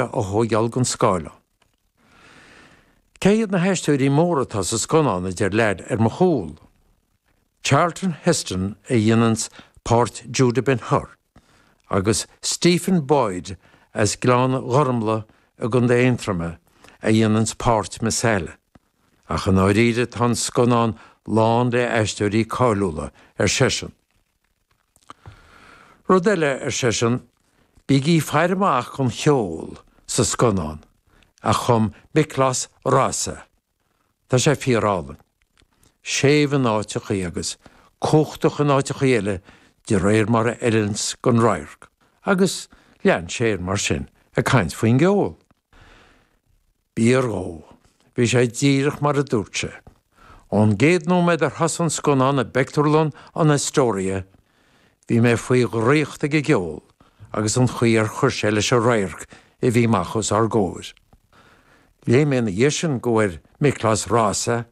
a thóigeáil den scáileán. Cé hiad na haisteoirí móra atá sa scannán, a deir leaid ar mo chúl. Charlton Heston a dhéananns páirt Judah Ben Hur, agus Stephen Boyd as Gleann Ghormlaigh i gContae Aontroma a dhéananns páirt Messala. Ach i ndáiríre tá an scannán lán le aisteoirí cáiliúla, ar seisean. Rud eile, ar seisean, bígí faire amach don cheol sa scannán a chum Miklos Rozsa, tá sé fíorálainn, séimh in áiteachaí agus cumhachtach in áiteachaí eile de réir mar a fheileanns don radharc. Agus lean sé air mar sin ag caint faoin gceol. B'fhíor dhó. Bhí sé díreach mar a dúirt sé. Ón gcéad nóiméad ar thosaigh an scannán i bpictiúrlann an Astoria, bhí mé faoi dhraíocht ag an gceol agus an chaoi ar chuir sé leis an radharc a bhí amach os ár gcomhair. Léigh mé ina dhiaidh sin go bhfuair Miklos Rozsa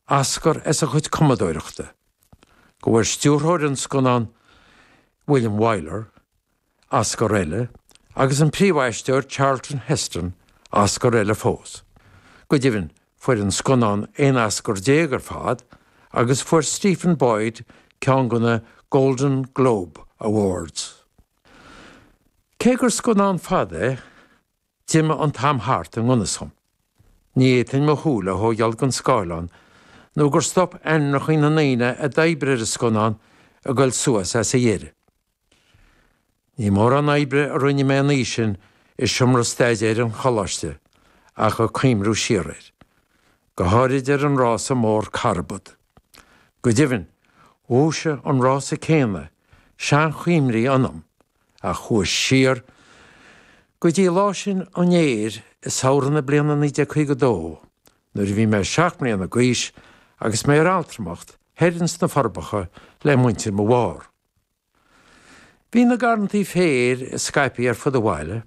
Oscar as a chuid cumadóireachta, go bhfuair stiúrthóir an scannáin, William Wyler, Oscar eile, agus an príomhaisteoir Charlton Heston, Oscar eile fós. Go deimhin, fuair an scannán 11 Oscar ar fad agus fuair Stephen Boyd ceann de na Golden Globe Awards. Cé gur scannán fada é, d'imigh an t-am thart i ngan fhios dhom. Ní fhéadfainn mo shúile a thógáil den scáileán nó gur stop ainmneacha na ndaoine a d'oibrigh ar an scannán ag dul suas ag a dheireadh. Ní mórán oibre a rinne mé an oíche sin i seomra staidéir an Choláiste ach ag cuimhniú siar air, go háirid ar an rása mór carbad. Go deimhin, dhúisigh an rása céanna seanchuimhní ionam a chuaigh siar go dtí lá sin an fhéir i samhradh na bliana 1952 nuair a bhí mé seacht mbliana d'aois agus mé ar altramacht thoir ins na Forbacha le muintir mo mháthair. Bhí na garrantaí féir scaipthe ar fud an bhaile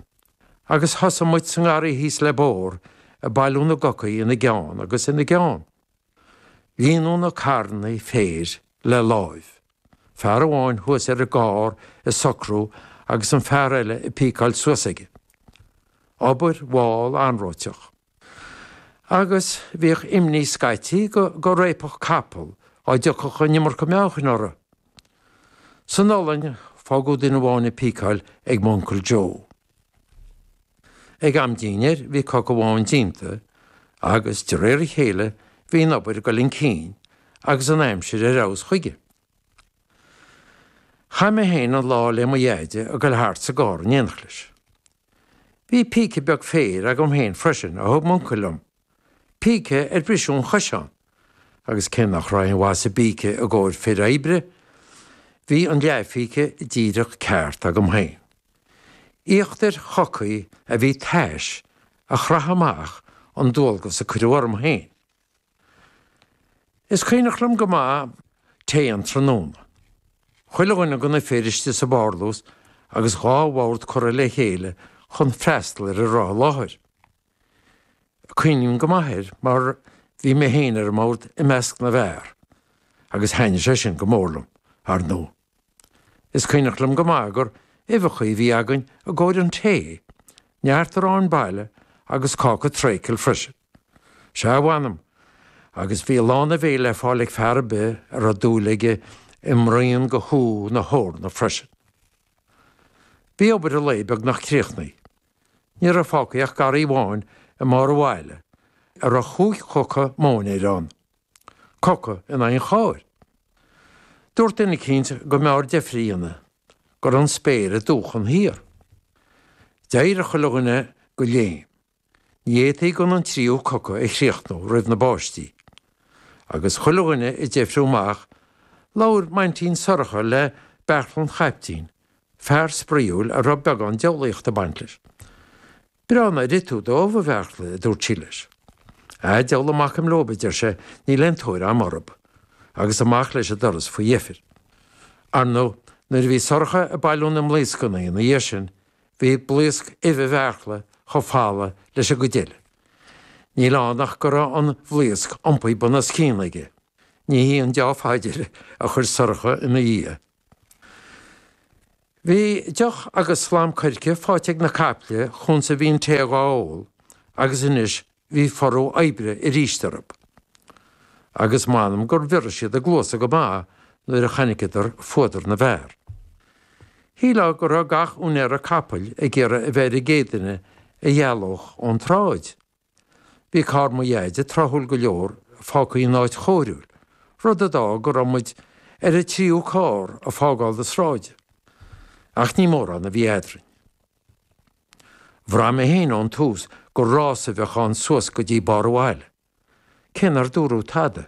agus thosaigh muid sa ngarraí thíos le bóthar ag bailiú na gcocaí ina gceann agus ina gceann. Líonadh na carrannaí féir le láimh, fear amháin thuas ar an gcarr ag socrú agus an fear eile ag píceáil suas aige. Obair mhall anróiteach. agus bhíodh imní scaití go réabfadh capaill dá dtiocfadh an iomarca meáchain orthu. San iothlainn, fágadh duine amháin ag píceáil ag m'uncail Joe. Ag am dínnéir, bhí coca amháin déanta, agus de réir a chéile, bhí an obair ag dul chun cinn, agus an aimsir ar fheabhas chuige. Chaith mé féin an lá le mo dheaide ag dul thart sa gcarr in éineacht leis. Bhí píce beag féir agam féin freisin a thug m'uncail liom, píce ar briseadh an chois ann, agus cé nach raibh aon mhaith sa bpíce i gcomhair fir oibre, bhí an leathphíce díreach ceart agam féin. Íochtair chocaí a bhí tais a chraitheadh amach an dualgas a cuireadh orm féin. Is cuimhneach liom go maith tae an tráthnóna. Chuile dhuine de na fir istigh sa bparlús agus dhá bhord curtha le chéile chun freastal ar a raibh i láthair. Cuimhním go maith air mar bhí mé féin ar an mbord i measc na bhfear agus thaitnigh sé sin go mór liom, ar ndóigh. Is cuimhneach liom go maith gur uibheacha a bhí againn i gcomhair an tae, neart aráin baile agus cáca treacle freisin. Sea, mh'anam, agus bhí lán a bhéil le fáil ag fear ar bith a raibh dúil aige i mbraon de shú na heorna freisin. Bhí obair an lae beagnach críochnaí. Ní raibh fágtha ach garraí amháin i mbarr an bhaile a raibh chúig choca móinéir ann, coca in aghaidh an chairr. Dúirt duine eicínt go mb'fhearr deifir a dhéanamh, go raibh an spéir ag dúchan thiar. D'éirigh chuile dhuine de léim. Ní fhéadfaí gan an tríú coca a chríochnú roimh na báistí. Agus chuile dhuine ag deifriú amach, labhair m'aintín Sorcha le Beartla an Chaiptín, fear spraíúil a raibh beagán diabhlaíocht ag baint leis. Breá nár ith tú d'ubh, a Bheartla, a dúirt sí leis. Á, diabhal a mbacaim leob, a deir sé, níl aon tóir a'm orthub. Agus amach leis an doras faoi dheifir. Ar ndóigh, nuair a bhí Sorcha ag bailiú na mblaoscannaí ina dhiaidh sin, Bhí blaosc uibhe Bheartla chomh falamh leis an gcuid eile. Níl ann ach go raibh an bhlaosc iompaithe bunoscionn aige. Ní hí an dea-phaidir a chuir Sorcha ina dhiaidh. Bhí deoch agus slám coirce faighte ag na caiple chúns a bhí an tae dhá ól agus anois Bhí furú oibre aríst orthub, agus m'anam gur bhioraigh siad a gcluasa go maith nuair a chonaiceadar fuadar na bhfear. Shílfeá go raibh gach úinéara capaill ag iarraidh a bheith ar an gcéad duine a dhealódh ón tsráid. Bhí carr mo dheaide tráthúil go leor fágtha in áit chóiriúil, rud a d'fhág go raibh muid ar an tríú carr ag fágáil na sráide. Ach ní mórán a bhí eadrainn. Bhraith mé féin ón tús gur rás a bheadh ann suas go dtí barr an bhaile, cé nár dúradh tada,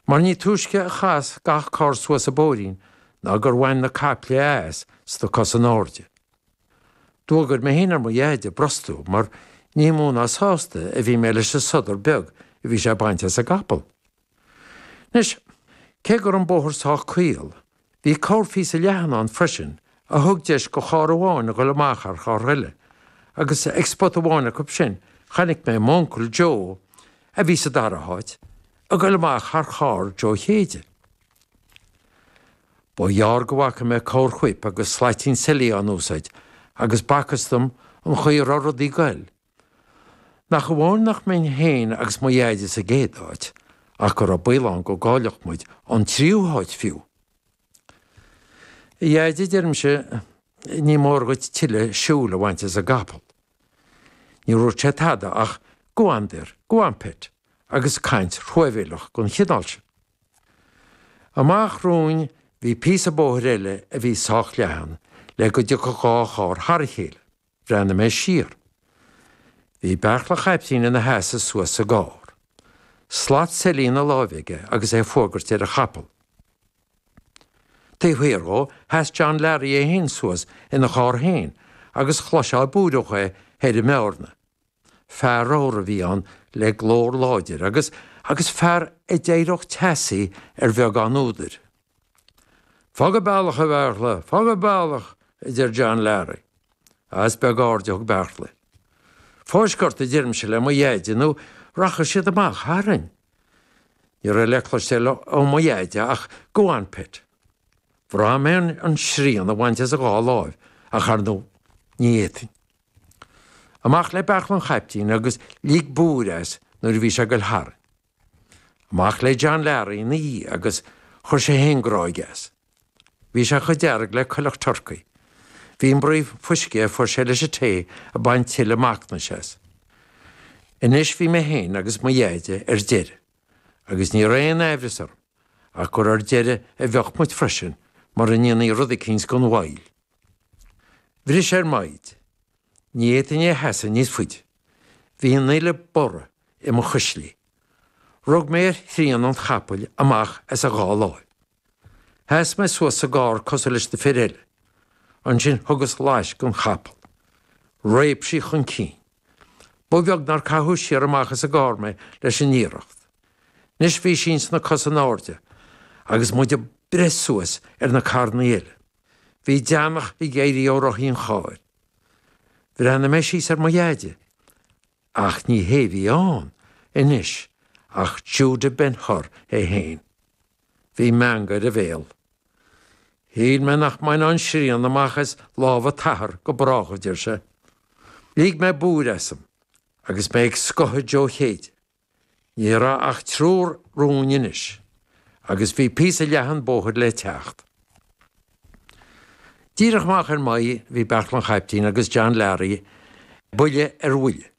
mar ní túisce a chas gach carr suas an bóithrín ná gur bhain na caiple as sna cosa in airde. D'fhuagair mé féin ar mo dheaide brostú mar ní mó ná sásta a bhí mé leis an sodar beag a bhí sé ag baint as an gcapall. Anois, cé go raibh an bóthar sách caol, bhí corrphíosa leathan ann freisin a thug deis go charr amháin a ghoil amach thar charr eile, agus ag spota amháin acu sin chonaic mé m'uncail Joe, a bhí sa dara háit, ag goil amach thar charr Joe Chéide. Ba ghearr go bhfaca mé corrfhuip agus slaitín seilí á úsáid agus b'fhacthas dom an chaoi a raibh rudaí ag goil, Nach amháin nach mbeinn féin agus mo Dheaide sa gcéad áit, ach go raibh baol ann go gcaillfeadh muid an tríú háit fiú! A Dheaide, deirimse, ní mór dhuit tuilleadh siúil a bhaint as an gcapall. Níor dhúirt sé tada ach go on there, go on pet, agus caint thruamhéileach den chineál sin. Amach romhainn bhí píosa bóthair eile a bhí sách leathan le go dtiocfadh dhá charr thar a chéile. Bhreathnaigh mé siar. Bhí Beartla an Chaiptín ina sheasamh suas sa gcarr. Slat seilí ina láimh aige agus é ag fuagairt ar a chapall. Taobh thiar dhó, sheas John Learaí é fhéin suas ina charr fhéin agus chloisfeá ag búireadh é thoir i mBearna. Fear ramhar a bhí ann le glór láidir agus, agus fear a d'éireodh teasaí ar bheagán údair. Fág an bealach, a Bheartla, fág an bealach, a deir John Learaí. Ach is beag aird a thug Beartla. Fáisc ort, a deirimse le mo Dheaide, nó rachaidh siad amach tharainn. Ní raibh le cloisteáil ó mo Dheaide ach go on pet. Bhraith mé an srian a bhaint as a dhá láimh ach ar ndóigh ní fhéadfainn. Amach le Beartla an chaiptín agus lig búir as nuair a bhí sé ag goil tharainn. Amach le John Learaí ina dhiaidh, agus chuir sé féin gráig as. Bhí sé chomh dearg le coileach turcaí. Bhí an braon fuisce a fuair sé leis an tae ag baint tuilleadh macnais as. Anois bhí mé féin agus mo Dheaide ar deireadh, agus ní raibh aon aimhreas orm ach gur ar deireadh a bheadh muid freisin mura ndéanfaí rud eicínt gan mhoill. Bhris sé ar m'fhoighid. Ní fhéadfainn é a sheasamh níos faide. Bhí an fhuil ag borradh i mo chuislí. Rug mé ar shrian an chapaill amach as a dhá láimh. Sheas mé suas sa gcarr cosúil leis na fir eile. Ansin thug mé laisc den chapall. Réab sí chun cinn. Ba bheag nár caitheadh siar amach as an gcarr mé leis an iarracht. Anois bhí sí ins na cosa in airde agus muid ag breith suas ar na carranna eile. Bhí deannach ag éirí ó rothaí an chairr. Bhreathnaigh mé síos ar mo dheaide, ach ní hé a bhí ann anois ach Judah Ben-Hur é féin. Bhí meangadh ar a bhéal. Shíl mé nach mbainfeá an srian amach as lámha t'athar go brách, a deir sé. Lig mé búir asam agus mé ag scoitheadh Joe Chéide. Ní raibh ach triúr romham anois agus bhí píosa leathan bóthair le teacht. Díreach amach ar m'aghaidh bhí Beairtle an Chaiptín agus John Larry buille ar bhuille.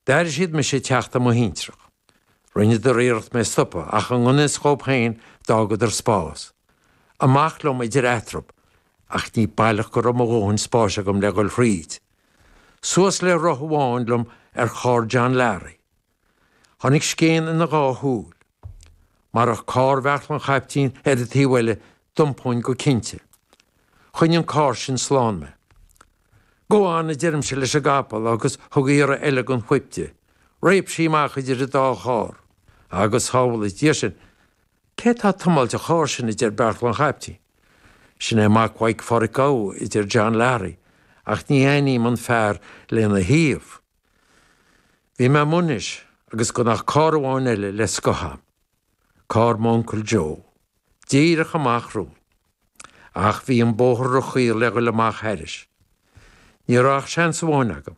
D'airigh siad mise ag teacht ar mo thintreach. Rinneadar iarracht mé a stopadh ach i ngan fhios dhóibh féin d'fhágadar spás. Amach liom idir eatarthu ach ní baileach go raibh mo dhóthain spáis agam le dhul thríd. Suas le roth amháin liom ar charr John Larry. Tháinig scéin ina dhá shúil. Marach carr Bheairtle an Chaiptín ar an taobh eile, d'iompóinn go cinnte. Choinnigh an carr sin slán mé. Go on, a deirimse leis an gcapall agus thug mé iarraidh eile den fhuip di. Réab sí amach idir an dá charr. Agus, go sábhála Dia sinn, cé tá ag tiomáilt an chairr sin, a deir Beairtle an Chaiptín. Sin é mac Mhaidhc Pháraic Óig a deir John Larry, ach ní aithním an fear lena thaobh. Bhí mé i Maínis agus gan ach carr amháin eile le scoitheadh agam, carr m'uncail Joe, díreach amach romhainn. Ach bhí an bóthar róchaol le dhul amach thairis. Ní raibh ach seans amháin agam.